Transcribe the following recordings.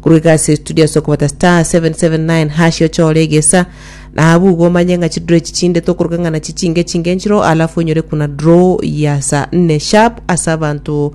Korwa egasi studio ase okobata star 779 hash ochore egesa na abwo igo omanye ng'a chidraw echi chinde tokoruga ng'a nachi chinge chinge enchiro alafu onyore kuna draw ya saa nne sharp ase abanto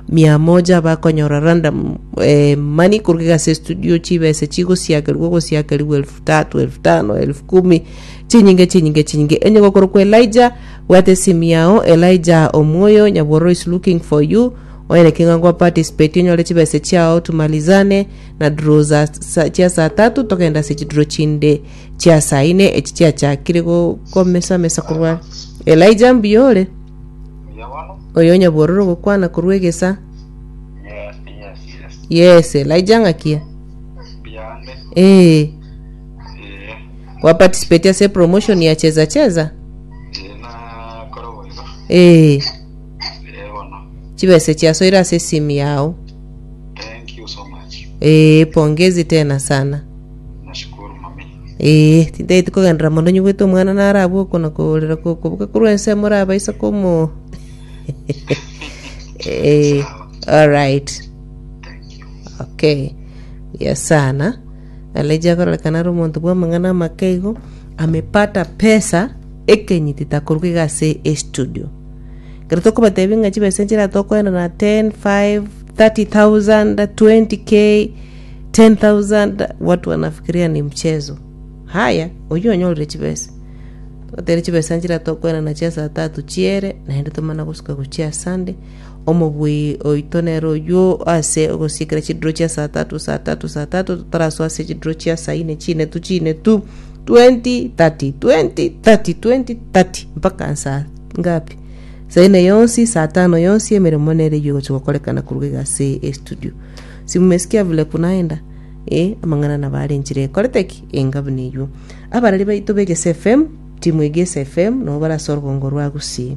mia moja bakonyora random eh, money koruga egasi studio chibesa chigosiakerigwa ogosiakerigwa elfu tatu elfu tano elfu kumi chinyinge chinyinge chinyinge enye gokorokwa elija bwate esimu yao elija omwoyo nyabororo is looking for you Oire king'wango o participate onyore chibesa chiao tumalizane na dro za sa, chia saa tatu togende ase chidro chinde chia saa ine echi chiachakire go- komesa mesa korwa Elijah mbuya ore Mbuya bono? oyo onyabororo ogokwana korwa egesa Yes, yes, yes. yes Elijah ng'akia Mbuya ande. ee Eh, gwa participate ase promotion ya cheza cheza eh, nakora boigo. ee Eeh, bono. chibesa chiasoire ase esimu yao Thank you so much. ee pongezi tena sana Nashukuru mami. ee tintaeti kogenderera mono nyigwete omwana narabwo oko nakorera kokoboka korwa ense morabaisa komo ee alright Thank you. okay ya sana alaija akorerekana ari omonto bwa amang'ana amake igo amepata pesa ekenyiti takorwa iga ase estudio Ekero tokobatebia ng'a chibesa enchera tokoenda na ten, five, thirty thousand, twenty k, ten thousand, watu wanafikiria ni mchezo. Haya, oyio onyorire chibesa. Togotebi chibesa nchera tokoenda nachio ase saa tatu chiere, naende tomana gosuka gochia Sunday. Omobui oito nere oyio, ase ogosiikera chidiro chia saa tatu, saa tatu, saa tatu, totarasoa ase chidiro chia saa ine chinetu chinetu, 2030, 2030, 2030, mpaka saa ngapi? Saa ine yonsi, saa tano yonsi, emeremo nere eyio egochia gokorekana korwa iga ase estudio. Simumesikia vile kunaenda? Eh, amang'ana nabo are enchera ekorete ki? Enga buna eyio. Abarari baito b'Egese FM, timu Egese FM, nabo barasoa orogoogo rwa Gusii.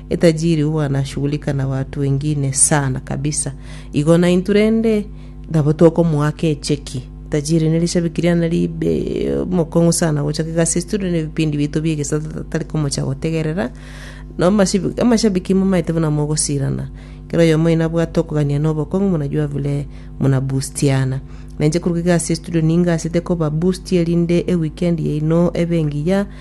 Etajiri huwa anashughulika na watu wengine sana kabisa igo naintu rende nabo tokomoaka echeki Tajiri nerishabiki riane ribe mokong'u sana gocha kegasi studio ne vipindi bito bie gesato tatari komocha gotegerera no mashibi- amashabiki momaete buna mogosirana kero oyomo ina bwate okogania na obokong'u munajua vile muna boostiana nainche korwa egasi studio ningasete koba boost erinde eweekend yaino ebe engiya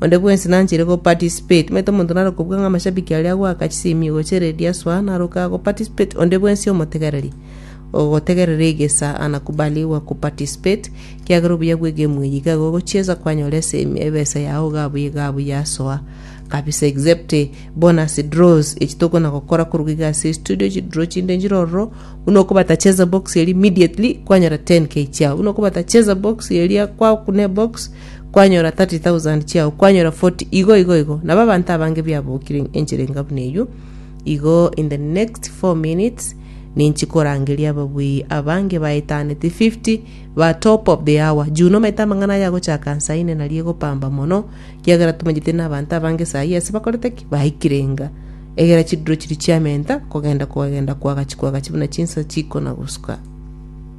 Onde bwensi nanchire go participate. Omanyete omonto naro kobua ng'a amashabiki aria agoaka chisemi ogochia eredio asoa, naro kaga go participate. Onde bwensi omotegereria, ogotegerera egesaa anakubali igwa go participate, ekiagera obuya bwe egemu eye iga igo ogochiesa kwanyora esemi, ebesa yao iga abuya iga abuya asoa kabisa except bonus draws echi tokona gokora korwa iga ase estudio, chidraw chinde nchire ororo, buna okobata cheza box eria immediately kwanyora 10k chiao, buna okobata cheza box eria kwakuna ebox, kwanyora thirty thousand chiao, kwanyora forty, igo igo igo. Nabo abanto abange biabokire enchera enga buna eyio. Igo in the next four minutes ninchi korangeria ababui abange baetaneti fifty ba top of the hour. Juu nomaete amang'ana aya agochaka nsa ine naria egopamba mono, kiagera tomanyeti na abanto abange sayi ase bakorete ki? Baikire enga. Egera chidiro chiria chiamenta kogenda kogenda kwagachi kwagachi buna chinsa chikona gosuka.